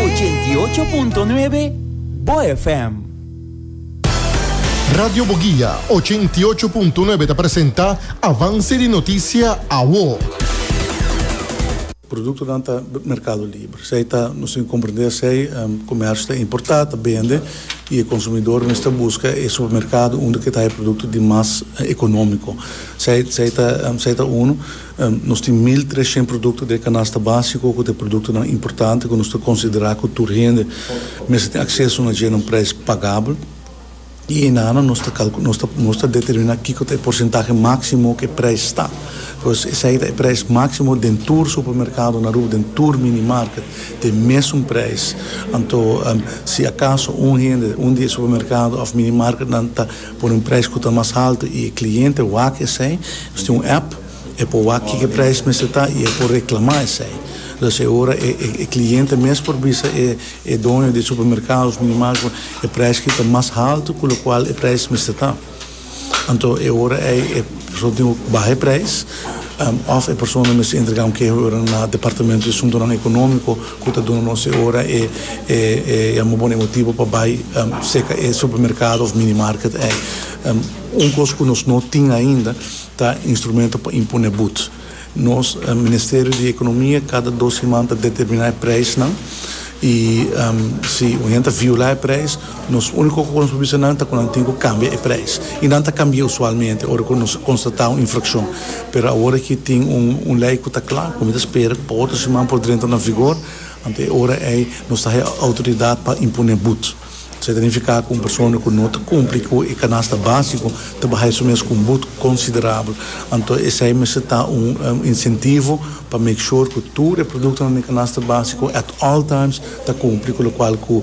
Ochenta i ocho punto nuebe Bo FM. Radio Boguia ochenta i ocho punto nuebe ta presenta Avance di Noticia Awo. Productonan ta mercado libre, esei ta nos tin comprende esei comercio ta importa, ta bende y e consumidor mester busca e supermercado unda ke ta hay producto di mas economico. Esei ta uno. Nos tin mil treshent produkto den e kanasta básiko ku ta e produktonan importante ku nos ta konsiderá ku tur hende mester tin akseso na dje na un preis pagabel. I einanan nos ta kalku nos ta nos ta determiná kiko ta e porsentahe máksimo ku e preis ta. Pues esei ta e preis máksimo den tur supermerkado na Aruba, den tur minimarket ta e mesun preis. Anto si akaso un hende un di e supermerkado òf minimarketnan ta. Por un prijs cu ta mas alto y e cliente wak esey, nos tin un app, e por wak kico e prijs mester ta y e por reclama esey. Los e ora e e cliente mes por bisa e e doño di e supermercado of minimarket e prijs ki ta mas alto cu locual e prijs mester ta. Anto e ora ey e persona tin oc baha e prijs of e persona mester entrega un keho e ora na Departamento di Asuntonan Economico, ku ta duna nos e ora e a mobo na e motibu pa bai seka e supermerkado òf mini market ei. Un kos ku nos no tin ainda ta instrumento pa imponé bud. Nos Ministerio di Ekonomia kada dos siman ta determiná e preisnan i si un hende ta violá e preis, Nos úniko ku nos por bisa nan ta ku nan tin ku kambia e preis i nan ta kambia usualmente ora ku nos konstatá un infrakshon. Pero awor aki tin un un lei ku ta kla ku mi ta spera ku pa otro siman por drenta na vigor, anto e ora ei nos ta haña outoridat pa imponé but. Esei ta nifiká ku un persona ku no ta kumpli ku e kanasta básiko ta bahai su mes ku un but konsiderabel. Anto esei mester ta un insentivo pa make sure ku tur e produktonan den e kanasta básiko at all times ta kumpli ku lokual ku